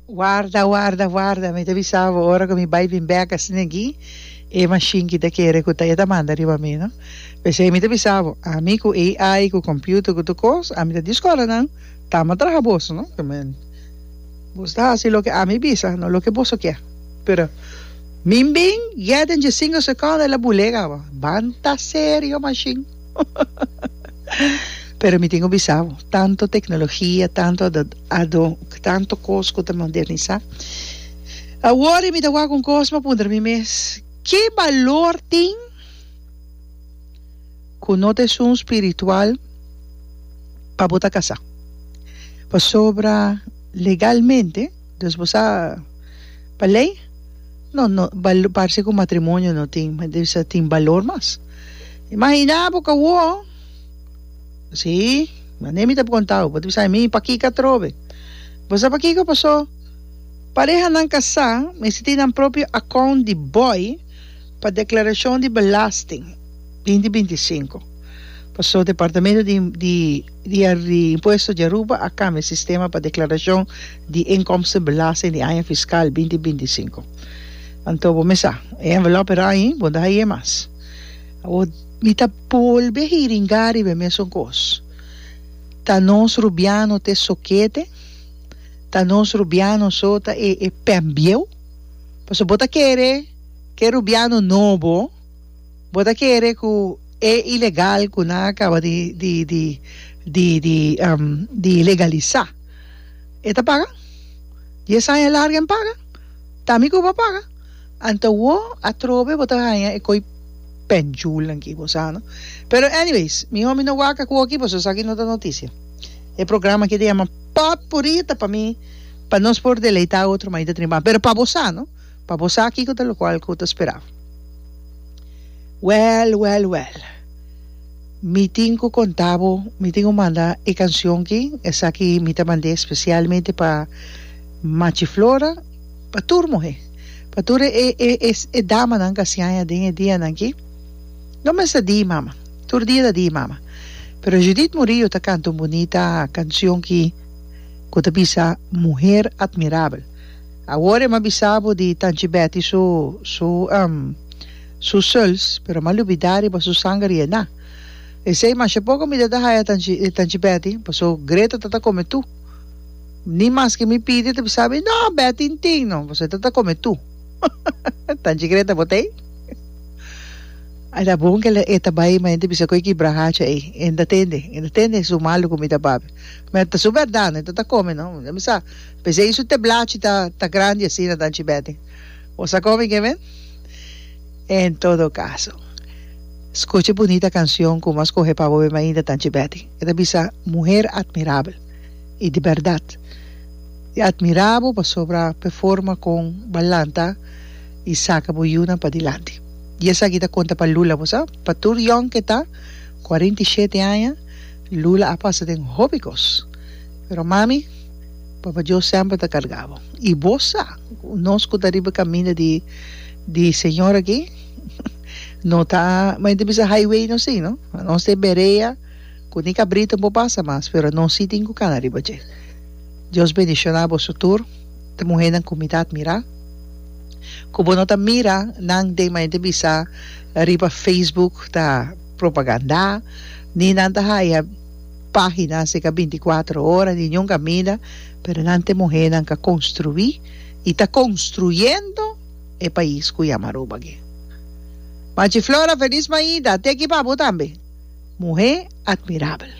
Warda, warda, warda, mi ta bisa bo ora ku mi bai bin bek asina aki, e mashin ki ta kere ku ta e ta manda riba mi, no. P'esei mi ta bisa bo, ami ku AI, ku kòmpiuter, ku tur kos, ami ta di skòlanan, Tama traha boso, no. Boso ta hasi loke ami bisa, no loke boso ke. Pero mi bin get den dje sinku sekònda, el a bul'é kaba, banta serio mashin. Pero mi tin ku bisa bo, tanto teknologia, tanto ado, tanto kos ku ta modernisá, a wòri mi ta wak un kos, mi a puntra mi mes, ke balor tin ku no ta esun spiritual pa bo ta kasá? Pasobra legalmente Dus bo sa pa lei no no bal parse ku matrimonio no tin me bisa tin balor mas imaginá bo ka wou si mane mi ta konta bo bo ta bisa mi pakiko a trobe bo sa pakiko paso parehanan kasá mester tin nan propio akount di bòi pa deklarashon di belasting binti binti i sinku paso departamento di di. Di a di Impuesto di Aruba a cambia e sistema pa declaracion di inkomsten belasting di aña fiscal binti binti sinku. Anto bo mesa e envelop e rañi bo no ta haye mas. Awor mi ta bolbe a hiringa riba e mesun kos. Ta nos rubiano te sokete? Ta nos rubiano so ta e e pembieu? Paso bo ta kere ke rubiano nobo. Bo ta kere ku e ilegal ku nan a kaba di di di di di di legalisá e ta paga? Dies aña larga e paga? Ta mi ku bo a paga? Anto wo atrobe bo ta haña e koi pènjulnan ki bo sa no? Pero anyways mihó mi no waka ku oki pasobra esaki no ta notisia. E programa aki ta yama Potpuri ta pa mi pa nos por deleitá otro m'a i ta trinba pero pa bo sa no. Pa bo sa kiko ta locual cu ta spera. Well, well, well. Mi tin cu conta bo, mi tin cu manda e cancion ki, esaki mi ta mand'e especialmente pa Machi Flora, pa tur muhe, pa tur e e e e damanan cu a siaña den e dianan ki. No mester di mama, tur dia ta di mama. Pero Judith Murillo ta canta un bunita cancion ki cu ta bisa Muher Admirabel. Awor em a bisa bo di Tanchi Betty su su em su suls pero em a lubida riba su sanger Yena. Esey masha por comida ta haya Tanchi Tanchi Betty paso Greta ta ta come tu. Ni mas ke mi pidi e ta bisa mi no Betty in tin no paso e ta ta come tu. Tanchi Greta bo ta ey? Ai ta bon ke e ta bay ma e ta bisa ku e kibra hacha ey e ta tende e ta tende su malo comida papi ma e ta su berdad no e ta ta come no. P'esei su teblachi ta ta grandi asina ta anchi bèten. Bo sa komo mi ke men? En todo kaso, skucha e bunita kanshon ku Mas Kohe pa Bobe Mainda ta anchi bèten. E ta bisa, Muher atmirabel. I di bèrdat, e atmirá bo pasobra p'e forma kon b'a lanta i saka bo yunan padilanti. I esaki ta konta pa Lula, bo sa. Pa tur yòn ke ta, kuarenta i shete aña, Lula a pasa den hopi kos. Pero mami? Papa Dios semper ta carga bo. Y bo sa, nos cu ta riba caminda di di Señor aki, no ta, mei ta bisa highway no si no, nos ta e berea cu ni cabrito por pasa mas, pero nos si tin cu cana riba dje. Dios bendiciona boso tur, e muhernan cu mi ta admira, cu bo no ta mira nan den mei ta bisa riba Facebook ta propaganda, ni nan ta haya. página si ka binti kuater ora ni niun kamida pero nan te muhénan ka konstruí i ta konstruyendo e pais ku yama Aruba aki. Machi Flora Feliz Maida te aki pa bo tambe! Muhé atmirabel.